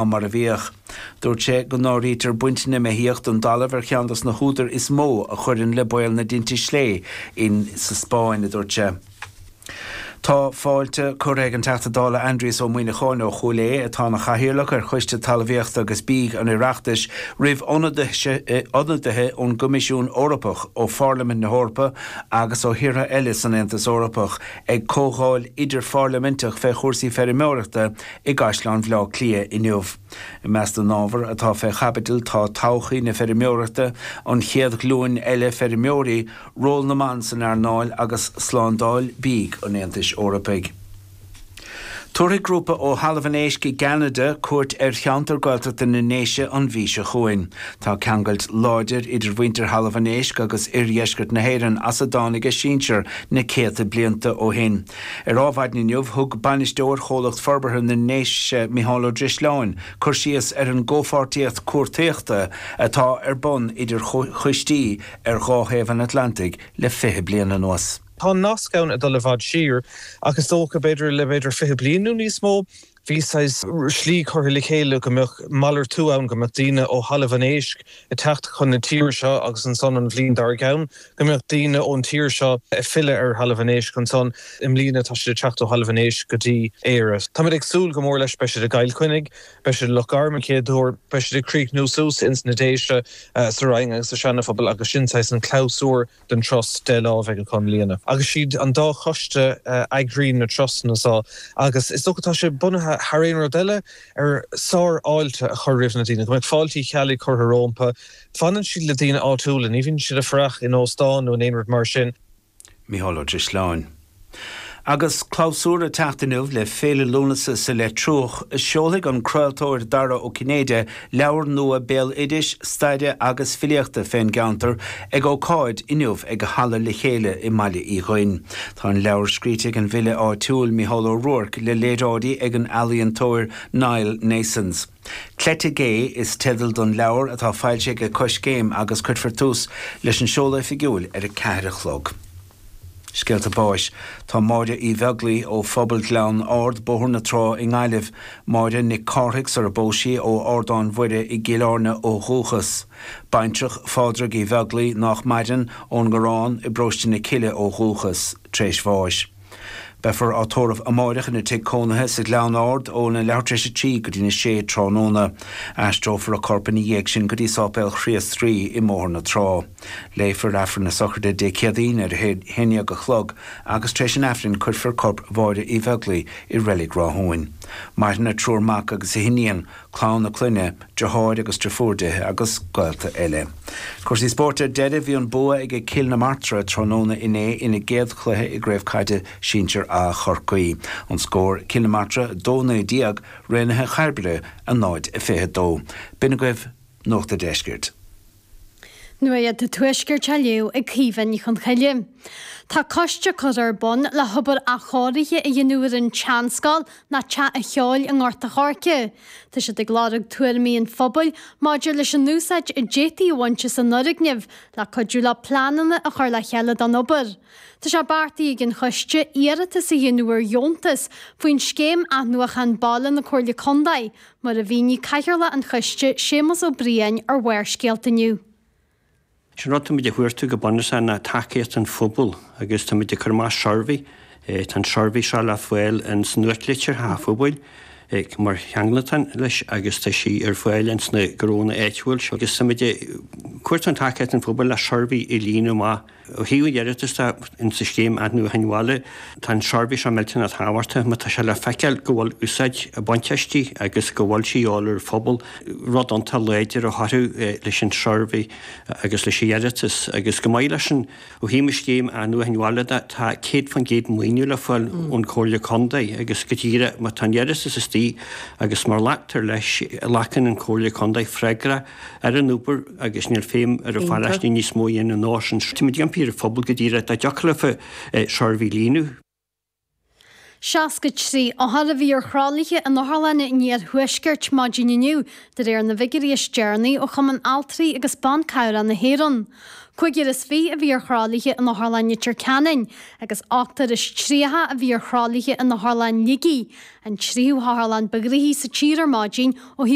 ná mar a bhíodh. Dúirt sé go n-áirítear baint na mbeithíoch den dtalamh ar cheann dos na húdair is mó a chuireann le baol na dtinte slé in sa Spáinn, a dúirt sé. Tá fáilte curtha ag an Teachta Dála Aindrias Ó Muíneacháin ó Chúil Aodha, atá ina chathaoirleach ar Choiste Talmhaíochta agus Bídh an Oireachtais, roimh ionadaithe ón gCoimisiún Eorpach, ó Pharlaimint na hEorpa agus ó thíortha eile san Aontas Eorpach ag comhdháil idirpharlaiminteach fé chúrsaí feirmeoireachta i gCaisleán Bhaile Átha Cliath inniu. I measc na n-ábhar atá fé chaibidil tá todhchaí na feirmeoireachta, an chéad ghlúin eile feirmeoirí, ról na mban san earnáil agus slándáil bídh an Aontais Eorpaigh. Tabharfaidh grúpa ó Thalamh an Éisc i gCeanada cuairt ar cheantar Gaeltachta na nDéise an mhí seo chugainn. Tá ceangailt láidir idir mhuintir Thalamh an Éisc agus oirdheisceart na hÉireann as a dtáinig a sinsear na céadta blianta ó shin. Ar Ádh Mhaidin inniu, thug Bainisteoir Chomhlacht Forbartha na nDéise, Micheál Ó Drisleáin, cur síos ar an gcomhpháirtíocht cuartaíochta atá ar bun idir choistí ar dhá thaobh an Atlantaigh le fiche bliain anuas. Tá an nasc ann ag dul i bhfad siar, ach is dócha b'fhéidir le b'fhéidir fiche bliain nó níos mó. Bhí saghas slí curtha le chéile go mbeadh malartú ann, go mbeadh daoine ó Thalamh an Éisc ag teacht chun na tíre seo agus ansan an bhliain dár gceann go mbeadh daoine ón tír seo ag filleadh ar Thalamh an Éisc ansan. I mbliana tá siad ag teacht ó Thalamh an Éisc go dtí Éire. Táimid ag súil go mór leis. Beidh siad i gCill Chainnigh, beidh siad i Loch Garman an chéad uair, beidh siad ag críochnú suas ins na Déise sa Rinn agus sa Seana-Phobal agus sin saghas an clabhsúr. den turas Lá Mhichíl a chomhlíonadh agus siad an dá choiste a eagraíonn na turasanna so agus is dócha tá sé bunaithe thar aon rud eile ar sár-fháilte a chur roimh na daoine go mbeadh Fáilte Uí Cheallaigh curtha rómpa. Fanann siad le daoine áitiúla, ní bhíonn siad ag fuireach in óstán nó in aon rud mar sin. Micheál Ó Drisleáin. Agus clabhsúr ag teacht inniu le Féile Lúnasa sa Leitriúch, seolfaidh an craoltóir Dara Ó Cinnéide leabhar nua béaloidis, staire agus filíochta fén gceantar ag ócáid inniu ag Halla Le Chéile i mBaile Uí Dhuinn. Tá an leabhar scríte ag an bhfile áitiúil Micheál Ó Ruairc le léaráidí ag an ealaíontóir Niall Naessens. Cleite Gé is teideal don leabhar atá foilsithe ag Coiscéim agus cuirfear tús leis an seoladh oifigiúil ar a ceathair a chlog. Scéalta Báis Tá Máire Uí Bheaglaoi ó Phobal Ghleann Ard, Bóthar na Trá i nGaillimh, Máire Nic Cárthaigh sar a bpós sí, ó Ardán Mhuire i gCill Áirne ó dhúchas. Baintreach Phádraig Uí Bheaglaoi, nách maireann, ón nGarrán i bParóiste na Cille ó dhúchas. Tréis bháis. Beifear á tórramh amáireach ina tigh cónaithe sa Ghleann Ard ó na leathuair tréis a trí go dtína sé tráthnóna. Aistreofar a corp ina dhiaidh sin go dtí Sáipéal Chríost Rí i mBóthar na Trá. Léifear Aifreann na Sochraide Dé Céadaoin ar a haon dhéag a chlog agus tar éis an Aifrinn cuirfear corp Mháire Uí Bheaglaoi i Reilig Rathúin. Maireann a triúr mac agus a hiníon, clann a clainne, deartháir agus deirfiúr di agus gaolta eile. Cúrsaí Spóirt Ar deireadh bhí an bua ag ag Cill na Martra tráthnóna inné ina gcéad chluiche i gCraobh Caide Sinsear A Chorcaí. An scór, Cill na Martra 2 19 Raonaithe Chairbre 0 22 B'in agaibh Nuacht an Deiscirt. Nuaíocht an Tuaiscirt á léamh ag Caoimhe Ní Chonchoille. Tá coiste curtha ar bun le hobair athchóirithe a dhéanamh ar an tseanscoil ná teach an cheoil i nGort a' Choirce. Tá siad ag lorg tuairimí an phobail maidir leis an úsáid a d'fhéadfaí a bhaint as an fhoirgneamh le cuidiú leo pleananna a chur le chéile don obair. Tá sé beartaithe ag an choiste iarratas a dhéanamh ar dheontas faoin scéim athnuachan baile na Comhairle Contae, Mar a mhínigh Cathaoirleach an Choiste, Séamus Ó Briain, ar Bharrscéalta inniu. Is é an rud atá muid a chuartú go bunúsach ná tacaíocht an phobail agus tá muid ag cur amach suirbhé, tá an suirbhé seo le fáil ins an nuachtlitir an phobail mar cheangaltán leis agus tá sí ar fáil ins na gnónna áitiúil seo agus tá muid ag cuartú an tacaíocht an phobail le suirbhé a líonadh amach. Ó thaobh an iarratas de, sa scéim athnuachain bhaile, tá an suirbhé seo millteanach tábhachtach má tá sé le feiceáil go bhfuil úsáid á baint aisti agus go bhfuil sí á lorg ag an phobal, rud iontach láidir a chabhrú leis an suirbhé agus leis an iarratas. Agus chomh maith leis sin, ó thaobh an scéim athnuachain bhaile de, tá 100% maoiniú le fáil ón Chomhairle Contae agus go díreach má tá an iarratas istigh agus má ghlactar leis, glacann an Chomhairle Contae freagra. ar an obair agus níl feidhm ar an pharóiste níos mó a dhéanamh an uair sin. Tá muid ag impí ar an phobal go díreach dá dtiocfadh leofa an suirbhé a líonadh. 63 othar a bhí ar thralaithe in otharlanna an Iarthuaiscirt maidin inniu, de réir na bhfigiuirí is deireanaí ó Chumann Altraí agus Ban Cabhrach na hÉireann. Cúigear is fiche a bhí ar thralaithe in Otharlann Leitir Ceanainn agus ochtar is tríocha a bhí ar thralaithe in Otharlann Shligigh, an tríú hotharlann ba ghnoithí sa tír ar maidin ó thaobh